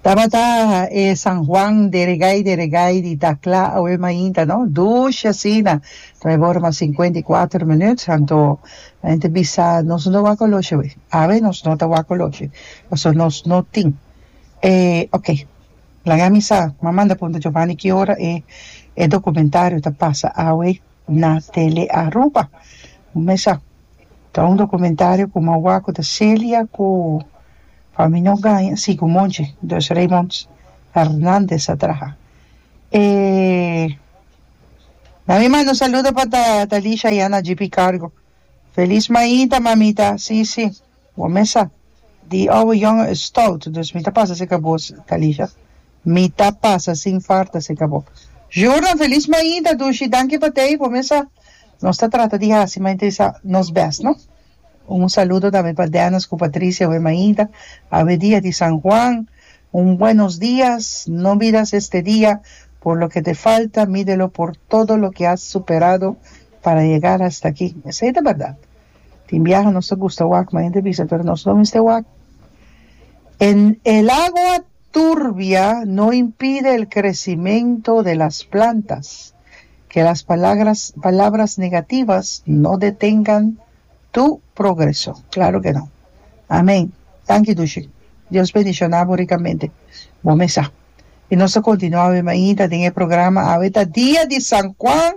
Tabata e San Juan de Regay de Regay di Dakla awe mainta no dushi asina traibor mas sinkuenta i kuater minut anto nan ta bisa nos no wak oloshi awe awe nos no ta wak oloshi pasobra nos no tin e ok laga mi sa m'a manda punta Jovani ki ora e documentario ta pasa awe. Na Tele Aruba bo mes a ta un documentario cu mau wak cu ta Celia cu Fami No Gaña si cu Monchi Dos Reymond Hernandez a traha e na mi manda un saludo pa Talisha y Ana G P Cargo Feliz Maita mamita si si. Bo mesa di awe yongen e stout, dus mi ta pasa cerca bo Talisha. Mi ta pasa sin farta cerca bo. Jordan, Feliz Maida, Dushi, danki pa tei, bo mesa. Nos ta trata di haci mai entre sa nos best, no? Un saludo tambe pa Dennis cu Patricia awe maida, awe dia di San Juan. Un buenos dias, no miras este dia por loke te falta, midelo por todo loke has superado para yegar hasta aki. Esey ta berdad. Tin biaha nos ta gusta wak ma hende bisa pero nos no mester wak. En el agua turbia no impide el crecimento de las plantas, que las palagras palabras negativas no detengan tu progreso. Claro que no. Amen. Danki Dushi. Dios bendiciona bo ricamente. Bon mesa. Y nos ta continua awe mainta den e programa. Awe ta dia di San Juan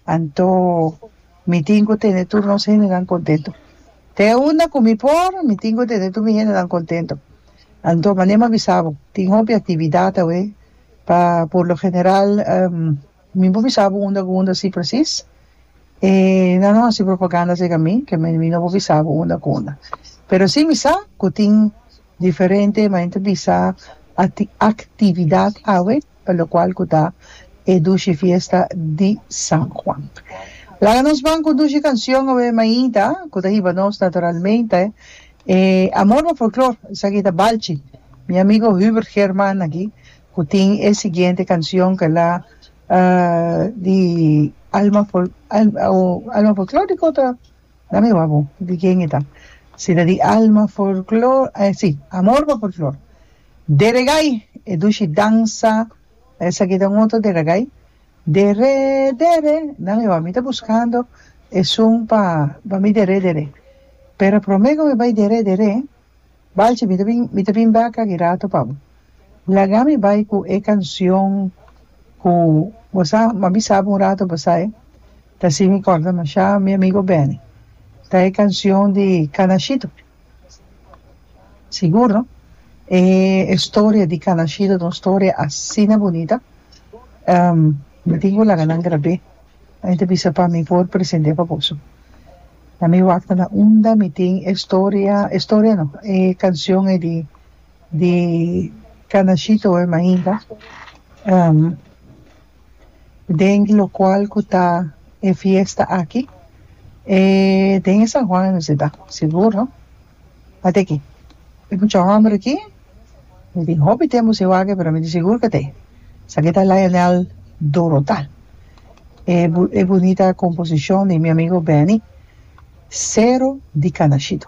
anto Mi tin cu tene tur nos hendenan contento. Te unda cu mi por, mi tin cu tene tur mi hendenan contento. Anto, mane m'a bisa bo, tin hopi actividad awe. Pa por lo general, mi por bisa bo unda cu unda si precies. E nan lo haci propaganda acerca mi, que mi no por bisa bo unda cu unda. Pero si mi sa cu tin diferente, mane ta bisa, actividad awe. pa lokual ku ta e dushi fiesta di San Juan. Laga nos ban ku un dushi kansion awe Maita ku ta hiba nos naturalmente e amor pa folklor. Esaki ta Balchi, mi amigo Hubert German aki ku tin e siguiente kansion ke la di alma alma folklor di kota dame wak bo di ken e ta si ta di alma folklor si amor pa folklor. Deregai, e dushi dansa esaki ta un otro deregai, dere dere nan ewa mi ta buskando esun pa pa mi dere dere pero prome ku mi bai dere dere balchi mi ta bin mi ta bin baka ki rato pa bo laga mi bai ku e kanshion ku bo sa ma mi sa un rato bo sai ta si mi korda masha mi amigo Benny ta e kanshion di kanashito. Sigur no e historia di ka nashido ta un historia asina bunita mi tin cu laga nan grabé nan ta bisa pa mi por presente pa boso na mi wak na unda mi tin e historia e historia no e cancion e di di ka nashito e mainta. den locual cu ta e fiesta aki e den e San Juan e Noceda sigur no adeque e mucha homber aki mi tin hopi tempo sin wak pero mi tin sigur cu te esaki ta Lionel Dorota e bunita composicion di mi amigo Benny cero di canashito